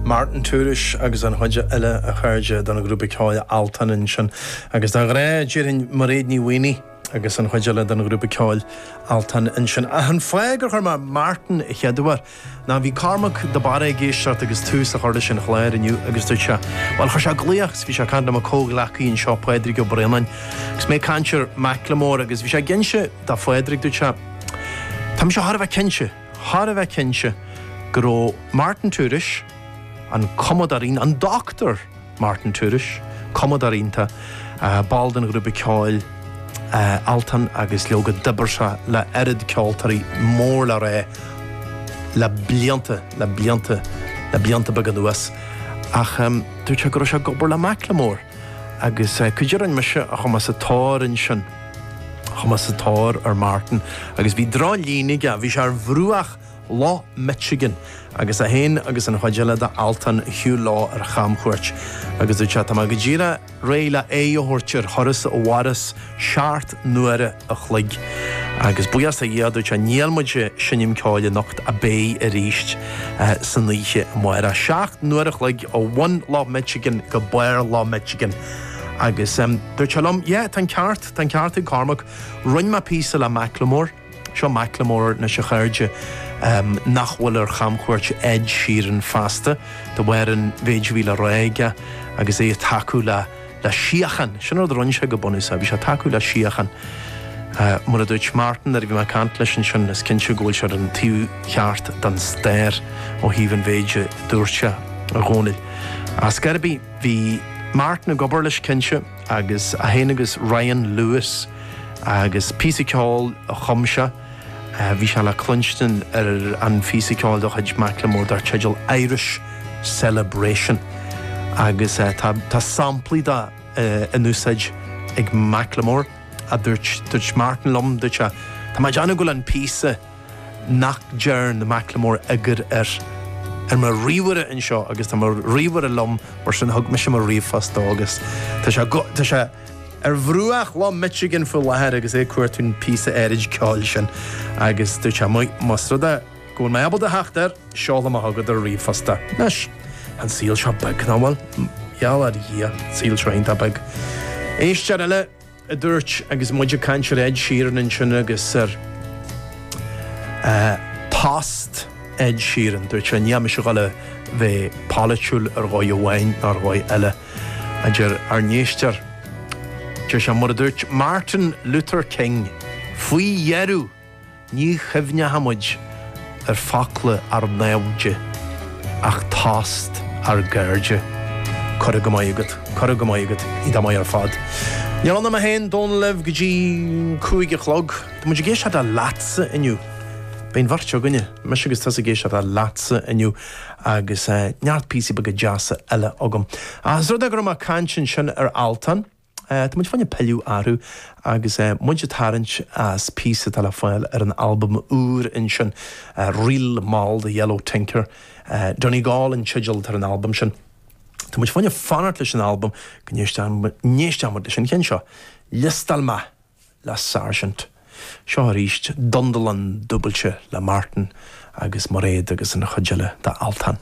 Martin Tourish agus an chuid eile, a chairde, don ghrúpa ceoil Altan ansin. Agus de ghnáth, déarfainn Mairéad Ní Mhaonaigh agus an chuid eile don ghrúpa ceoil Altan ansin. Ach an fáth gur chuir mé Martin an chéad uair, Now, bhí Cormac de Barra ag éisteacht agus tús á chur leis an chlár inniu agus dúirt sé, bhuel, chuir sé glaoch agus bhí sé ag caint le mo comhghleacaí anseo, Pádraig Ó Breoláin, agus mé ag caint ar Macklemore agus bhí sé ag inse do Phádraig, dúirt sé, tá mise thar a bheith cinnte, thar a bheith cinnte go raibh Martin Tourish, an cumadóir, an doctúir Martin Tourish, cumadóir iontach, ball den ghrúpa ceoil Altan agus leoga d'oibir sé le oiread ceoltóirí mór le rá le blianta, le blianta, le blianta beaga anuas ach dúirt sé go raibh sé ag obair le Macklemore agus caidé a rinn mise ach chuaigh mé sa tóir ansin, chuaigh mé sa tóir ar Martin agus bhí drochlíne aige, bhí sé ar bhruach. Loch Michigan, agus é féin agus an chuid eile de Altan ar shiúl ar chamchuairt. Agus dúirt sé, Tá mé go díreach réidh le aghaidh a thabhairt ar thuras a mhaireas seacht n-uaire a chloig. Agus buíochas do Dhia, a dúirt sé, níl muid ag seinm ceoil anocht ach beidh arís san oíche amárach. Seacht n-uaire a chloig ó bhun Loch Michigan go barr Loch Michigan. Agus dúirt sé liom, Yeah, tá an ceart, tá an ceart ag Cormac. Rinn mé píosa le Macklemore. Seo Macklemore anseo a chairde nach bhfuil ar chamchuairt Ed Sheeran feasta. De bharr an mhéid a bhí le rá aige agus é ag tacú le síocháin. Sin rud a rinn sé go bunúsach, bhí sé ag tacú le síocháin. Mar a dúirt Martin, nuair a bhí mé ag caint leis ansin, is cinnte go bhfuil sé ar an taobh cheart den stair ó thaobh an mhéid a dúirt sé, a Dhónaill. Ach cibé ar bith, bhí Martin ag obair leis, cinnte. agus é féin agus Ryan Lewis agus píosa ceoil a chum sé. Bhí sé le cluinstin ar an phíosa ceoil de chuid Macklemore dar teideal Irish Celebration agus tá samplaí de in úsáid ag Macklemore. Dúirt Martin liom, dúirt sé, Tá mé ag déanamh go bhfuil an píosa. nach ndearn Macklemore eagar air, ar mo ríomhaire anseo agus tá mo ríomhaire liom mar sin thug mise mo ríomhphost dó agus tá sé go, tá sé ar bhruach Loch Michigan faoi láthair agus é ag cuartú an phíosa áirid ceoil sin agus dúirt sé muis, más rud é go bhfuil mé ábalta a theacht air, seolfaidh mé chugat ar ríomhphost é. Anois, tá an saol seo beag, nach bhfuil? Gheall ar Dhia, saol seo iontach beag. Éist. a dúirt, agus muid ag caint ar Ed Sheeran ansin agus ar thost Ed Sheeran, dúirt sé, níl mise ag dul a bheith polaitiúil ar dhóigh amháin ná ar dhóigh eile. A deir ár n-éisteoir, deir sé, mar a dúirt Martin Luther King faoi dheireadh, Ní chuimhneochaimid ar focla ár naimhde, ach tost ár gcairde. Curtha go maith agat. Curtha go maith agat, iontach maith ar fad. Níor fhanaim féin, Dónal libh go dtí cúig a chlog. Tá muid ag éisteacht le leatsa inniu. Beidh an bheirt againne, mise agus tusa ag éisteacht le leatsa inniu agus neart píosaí beaga deasa eile agam. Ach ós rud é go raibh mé ag caint ansin ar Altan. Tá muid fá choinne pilleadh orthu agus muid ag tarraingt as píosa atá le fáil ar an albam úr ansin, ríl mall The Yellow Tinker, Donegal an teideal atá ar an albam sin. Tá muid fá choinne fanacht leis an albam go n-éistfidh muid leis an cheann seo, Liostáil mé le Sáirsint. Seo arís Dundalán dúbailte le Martin agus Mairéad agus an chuid eile d'Altan.